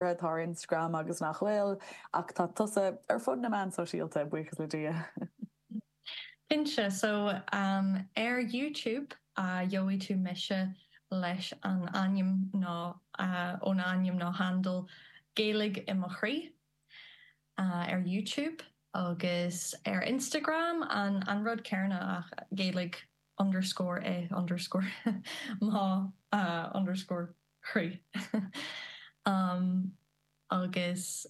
atá ar Instagram agus nach bhfuil, ach tá tusa ar fud na meán sóisialta, buíochas le Dia. Cinnte, so ar YouTube a gheobhaidh tú mise leis an ainm nó ón ainm nó handle Gaeilge i mo chroí ar YouTube agus ar Instagram an rud céanna ach Gaeilge underscore i underscore mo underscore. chroí. Agus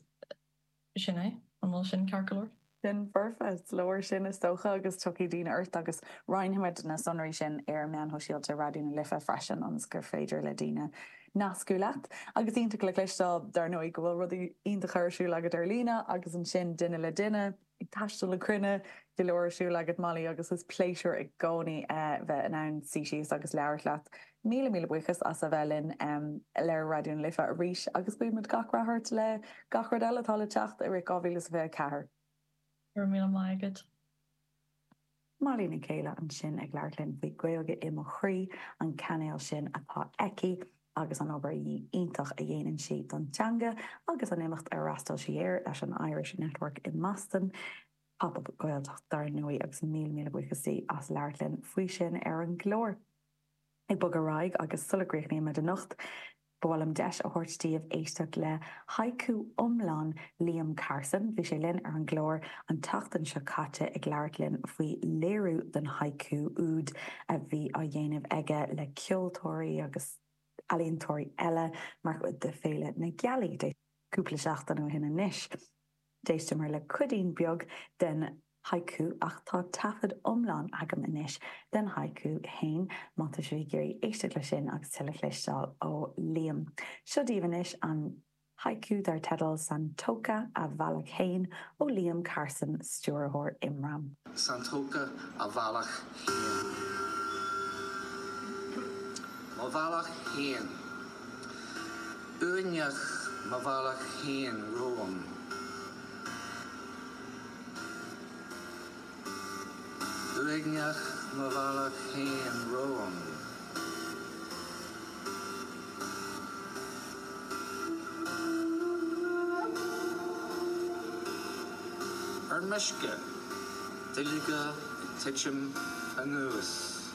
sin é. An bhfuil sin ceart go leor? Sin foirfe. Is leor sin, is dócha, agus tiocfaidh daoine ort agus roinnfimid na sonraí sin ar meáin shóisialta Raidió na Life freisin ionas gur féidir le daoine nascadh leat. Agus iontach le cloisteáil, dar ndóigh, go bhfuil rudaí iontacha ar siúl agat ar líne agus ansin duine le duine. Ag taisteal na cruinne go leor ar siúl agat, Molly, agus is pléisiúr i gcónaí é bheith in ann suí síos agus labhairt leat. Míle míle buíochas as a bheith linn ar Raidió na Life arís agus guímid gach rath ort le gach rud eile atá le teacht i rith 2024. Go raibh míle maith agat. Molly Nic Céile ansin ag labhairt linn faoi Gaeilge i mo chroí, an cainéal sin atá aici agus an obair iontach a dhéanann sí don teanga agus an imeacht a fhreastail sí air leis an Irish Network i mBoston, Pop Up Gaeltacht dar ndóigh agus míle míle buíochas di as labhairt linn faoi sin ar an gclár. Ag bogadh ar aghaidh agus sula gcríochnaíonn muid anocht, Ba mhaith liom deis a thabhairt daoibh éisteacht le haiku iomlán Liam Carson. Bhí sé linn ar an gclár an tseachtain seo caite ag labhairt linn faoi léiriú don haiku úd a bhí á dhéanamh aige le ceoltóirí agus ealaíontóirí eile mar chuid de Féile na Gealaí, cúpla seachtaine ó shin anois. D'éisteamar le cuidín beag den haiku ach tá taifead iomlán agam anois den haiku fhéin má tá sibh ag iarraidh éisteacht leis sin agus tuilleadh a chloisteáil ó Liam. Seo daoibh anois an haiku dar teideal 'Santoka, a bhealach fhéin' ó Liam Carson, stiúrthóir Imram. Santoka, mo bhealach fhéin. Uaigneach mo bhealach fhéin romham. Ar meisce, duilleoga ag titim anuas.